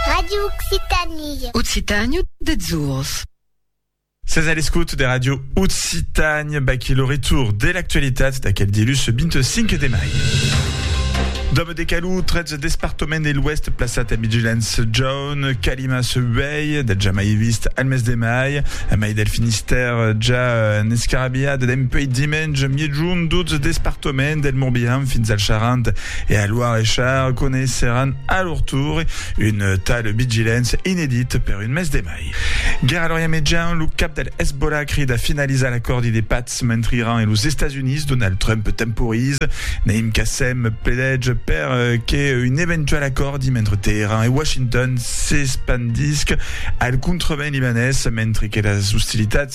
Radio Occitanie. Occitàniu deths ors. Sètz a l'escòt de Radio Occitània, baquí lo retour de l'actualitat d'aquel dilhus 25 de mai. Dòme de Calou, 13 despartament de l'Oèst plaçat en vigilància jaune, calimas uèi, del jamai vist al mes de mai, a mai del Finistèr ja en escarabiat dempuèi dimenge miègjorn, 12 despartament del Morbihan fins al Charente, E a Loire e Char coneisseràn a lor tour un tal Bigilens inedit per un mes de mai. Gerald Orià Mejan, lo cap del Hezbollah crida finalizar l'acòrdi de patz mentre Iran e los Estats Units, Donald Trump temporiza. Naim Qassem pledètz per que un eventual acòrdi mentre Teheran e Washington s'espandisca al contrevent libanés mentre que las ostilitats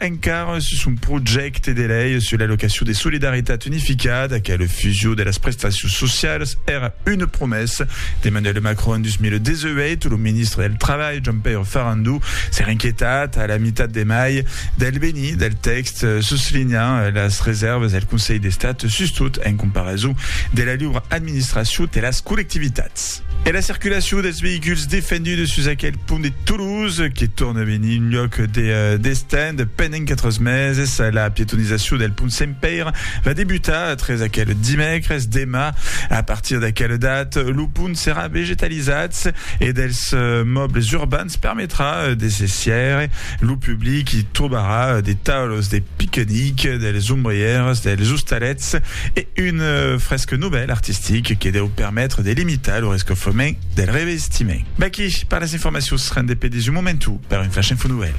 Encara sus un projècte de lei sus l'allocacion de solidaritat unificada qu'a la fusion de las prestacions socialas, èra una promessa d'Emmanuel Macron en 2018, lo ministre del Trabalh, Jean-Pierre Farandou, s'èra inquietat a la mitat de mai del benir del tèxt, soslinhant las resèrvas del Conselh d'Estat sustot en comparason de la liura administracion de las collectivitats. E la circulacion dels veïculs defendudes sus aquel pont de Toulouse, que torne a venir un lhòc de destent pendent 4 meses. La pietonizacion del pont Sent Pèire va debutar tres aquel dimècres. Demà, a partir d'aquela data, lo pont serà vegetalizat e dels mòbles urbans permetrà de se sièire. Lo public i trobarà de taules de piquenic, dels ombrièrs, dels ostalets, e un fresc novèl artistic que deu permetre de limitar lo rescofrement del revestiment. V'aquí per las informacions, rendé pe desu momentu per un Flash Info Novèl.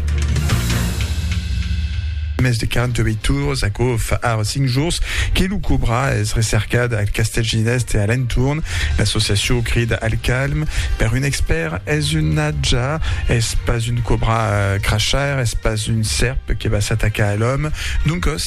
Mès de 48 tours, aquò fa ara 5 jours que lo cobra es recercat al castèl ginest e a l'entorn. L'associacion crida al calm. Per un expèrt, es un natja, es pas un cobra crachar, es pas un sèrp que va s'atacar a l'òme. Doncòs,